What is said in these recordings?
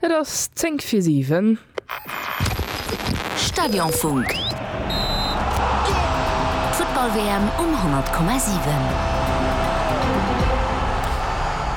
Et ass zéng fir siwen. Stadionfunk, D'Futtball-WM um 100,7.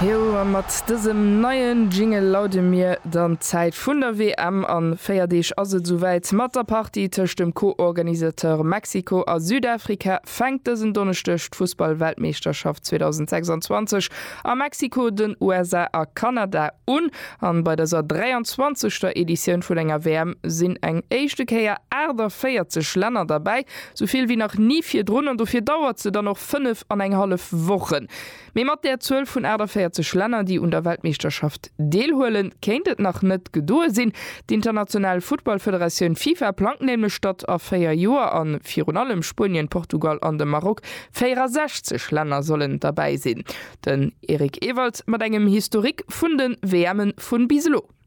Jo, a mat dësem neien Jingle laude mir dann d'Zäit vun der WM an. Véier Deeg ass et esouwäit mat der Partie tëscht dem Co-Organisateur Mexiko a Südafrika. fänkt dësen Donneschdeg d'Fussball-Weltmeeschterschaft 2026 a Mexiko, den USA a Kanada un. An bei dëser 23. Editioun vun enger WM sinn eng éischte Kéier 48 Länner derbäi, sou vill wéi nach ni virdrun. An dofir dauert se dann och fënnef an eng hallef Wochen. Mee mat där Zuel vun 48 Länner, déi un der Weltmeeschterschaft deelhuelen, kéint et nach net gedoe sinn. D'International Futtballfederatioun Fifa plangt nämlech, datt a véier Joer a virun allem Spuenien, Portugal an de Maroc 64 Länner sollen derbäi sinn. Den Eric Ewald mat engem Historique vun de WMen vun bis elo.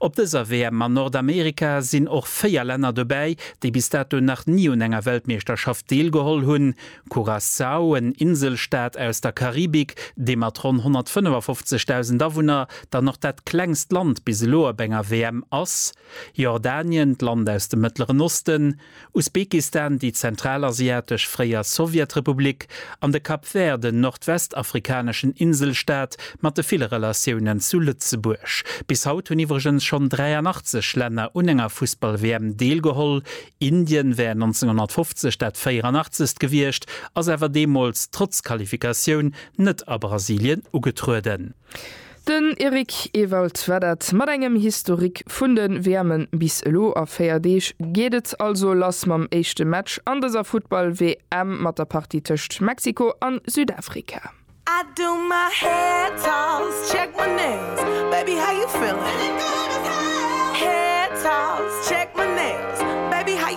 Op dëser WM an Nordamerika sinn och 4 Länner dobäi, déi bis dato nach ni un enger Weltmeeschterschaft deelgeholl hunn, Curaçao, en Inselstaat aus der Karibik, dee mat ronn 155.000 Awunner dann och dat klengst Land bis elo op enger WM ass, Jordanien, d'Land aus dem Mëttleren Osten, Usbekistan, déi zentralasiatesch fréier Sowjetrepublik, an de Cap Vert, en nordwestafrikaneschen Inselstaat mat de ville Relatiounen zu Lëtzebuerg. Bis haut hunn iwwregens schonn 83 Länner un enger Fussball-WM deelgeholl. Indien wär 1950 dat 84. gewiescht, ass awer deemools trotz Qualifikatioun net a Brasilien ugetrueden. Den Eric Ewald war dat mat engem Historique vun de WMe bis elo. A 4 Deeg geet et also lass mam éischte Match an dëser Futtball-WM mat der Partie tëscht Mexiko a Südafrika.